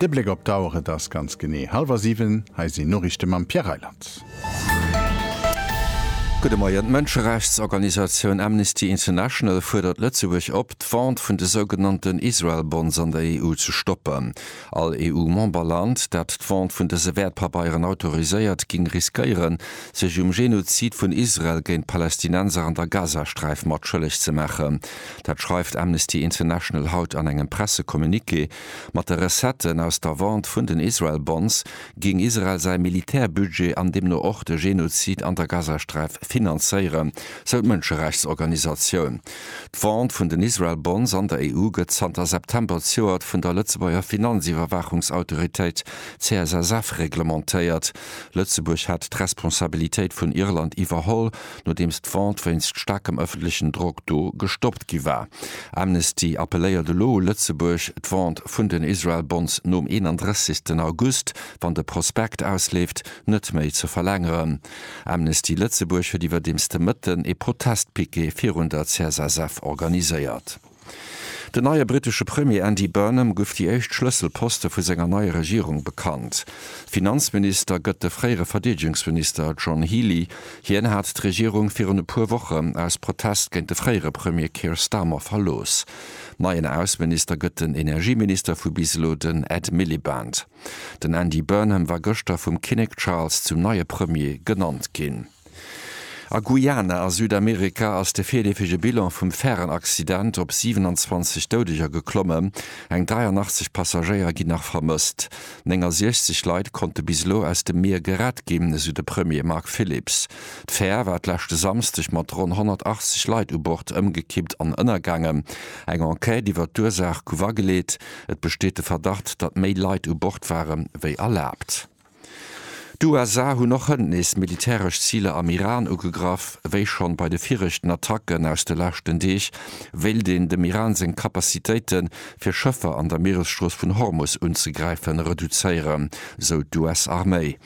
De Bléck op d'Auer, et ass ganz genee hallwer siwen. Hei sinn d'Noriichte mam Pierre Reyland. Gudde Moien. D'Mënscherechtsorganisatioun Amnesty International fuerdert Lëtzebuerg op, d'Vente vun de sougenannten Israel-Bonds an der EU ze stoppen. All EU-Memberland, dat d'Vente vun dëse Wäertpabeieren autoriséiert, géing riskéieren, sech um Genozid vun Israel géint d'Palästinenser an der Gazasträif matschëlleg ze maachen. Dat schreift Amnesty International haut an engem Pressecommuniqué. Mat de Recetten aus der Vente vun den Israel Bonds géing Israel säi Militärbudget an deemno och de Genozid an der Gazasträif finanzéieren, sou d'Mënscherechtsorganisatioun. D'Vente vun den Israel Bonds an der EU gëtt zanter September zejoert vun der Lëtzebuerger Finanziwwerwaachungsautoritéit CSSF reglementéiert. Lëtzebuerg hat d'Responsabilitéit vun Irland iwwerholl, nodeems d'Vente wéinst staarkem ëffentlechen Drock do gestoppt gi war. Amnesty appelléiert elo u Lëtzebuerg, d'Vente vun den Israel Bonds nom 31 August, wann de Prospekt ausleeft, net méi ze verlängeren. Amnesty Lëtzebuerg huet iwwerdeems de Mëtten ee Protestpiquet virun der CSSF organiséiert. Den neie brittesche Premier Andy Burnham guff déi éischt Schlësselposte vu senger neier Regierung bekannt. Finanzminister gëtt de fréiere Verdeedegungsminister John Healey. Hien hat d'Regierung virun e puer Woche aus Protest géint de fréiere Premier Keir Starmer verlooss. Neien Ausseminister gëtt den Energieminister vu bis elo, den Ed Miliband. Den Andy Burnham war gëschter vum Kinnek Charles zum neie Premier genannt ginn. A Guyana a Südamerika ass de virleefege Bilan vum Färenaccident op 27 Doudeger geklommen. Eng 83 Passagéier ginn nach vermësst. 69 Leit konnte bis elo aus dem Mier gerett ginn, esou de Premier Mark Phillips. D'Fär war d'leschte Samsdeg mat ronn 180 Leit u Bord ëmgekippt an ënnergaangen. Eng Enquête iwwer d'Ursaach gouf ageleet. Et besteet de Verdacht, datt méi Leit u Bord ware wéi erlaabt. D'USA hunn och hënt nees militäresch Ziler am Iran ugegraff. Wéi schonn bei de viregten Attacken aus de leschten Deeg, wéilt een dem Iran seng Kapazitéite fir Schëffer an der Mieresstrooss vun Hormus unzegräifen, reduzéieren, sou d'US-Arméi.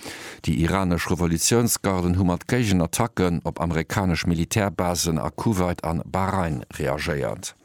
Déi iranesch Revolutiounsgarden hu mat Géigenattacken op amerikanesch Militärbasen a Kuwait an Bahrain reagéiert.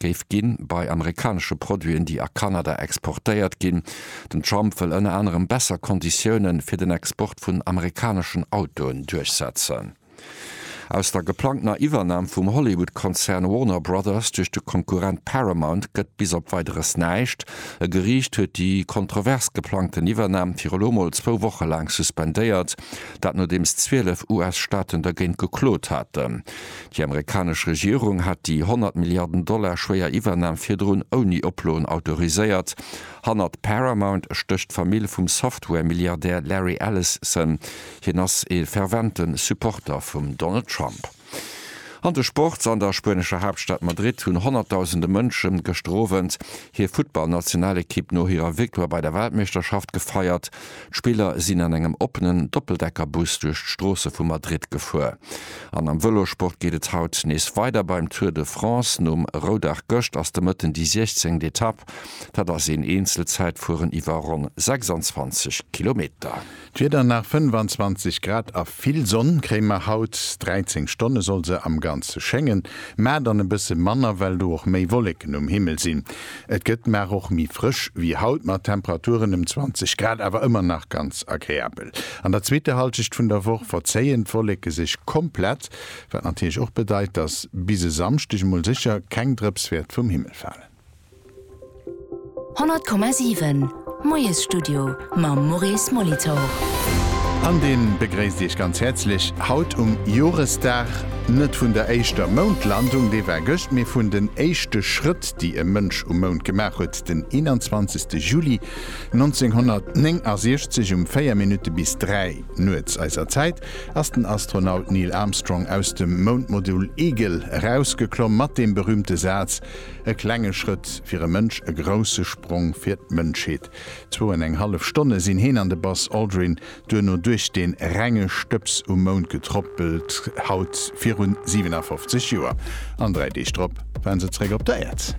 géif ginn, bei amerikanesche Produiten, déi a Kanada exportéiert ginn. Den Trump wëll ënner anerem besser Konditioune fir den Export vun amerikaneschen Autoen duerchsetzen. Aus der geplangtener Iwwernam vum Hollywood-Konzern Warner Brothers duerch de Konkurrent Paramount gëtt bis op Weideres näischt. E Geriicht huet déi kontrovers geplangten Iwwernam fir elo mol zwou Woche laang suspendéiert, dat nodeems 12 US-Staaten dergéint geklot haten. Déi amerikanesch Regierung hat déi 100 Milliarden Dollar schwéier Iwwernam virdrun ouni Oploen autoriséiert. Hannert Paramount stécht d'Famill vum Software-Milliardär Larry Ellison. Hien ass ee fervente Supporter vum Donald Trump. An de Sports, An der spuenescher Haaptstad Madrid hunn honnertdausende Mënsche gëschter Owend hir Futtballnationalekipp no hirer Victoire bei der Weltmeeschterschaft gefeiert. D'Spiller sinn an engem oppenen Doppeldeckerbus duerch d'Stroosse vu Madrid gefuer. An am Vëlossport geet et haut nees weider beim Tour de France. Nom Roudag gëscht ass de Mëtten déi 16. Etapp. Dat ass een Eenzelzäitfueren iwwer ronn 26 Kilometer. D'Wieder nach 25 Grad a vill Sonn kréie mer haut. 13 Stonne soll se am Ganze schéngen, mä dann e bësse manner, well do och méi Wolleken um Himmel sinn. Et gëtt mar och méi frësch wéi haut mat Temperaturen ëm 20 Grad, awer ëmmer nach ganz agreabel. An der zweeter Halschecht vun der Woch verzéien d'Wolleke sech komplett, wat natierlech och bedeit, dass bis e Samschdeg emol sécher keng Drëps wäert vum Himmel falen. 100,7 Moiesstudio mam Maurice Molitor. An dee begréisst Iech ganz häerzlech haut um Joresdag, net vun der éischter Moundlandung, déi war gëscht, mee vun den éischte Schrëtt, déi e Mënsch um Mound gemaach huet, den 21. Juli 1969 um 4 Minutte bis 3 nuets eiser Zäit ass den Astronaut Neil Armstrong aus dem Moundmodul Eagle erausgeklomm mat deem berüümte Saz, E klenge Schrëtt fir e Mënsch, e grousse Sprong fir d'Mënschheet. Zwou an eng hallef Stonne sinn heen an de Buzz Aldrin Duerno duerch dee renge Stëbs um Mound getrôppelt, haut virun 57 Joer. An dräi Deeg drop war se zeréck op der Äerd.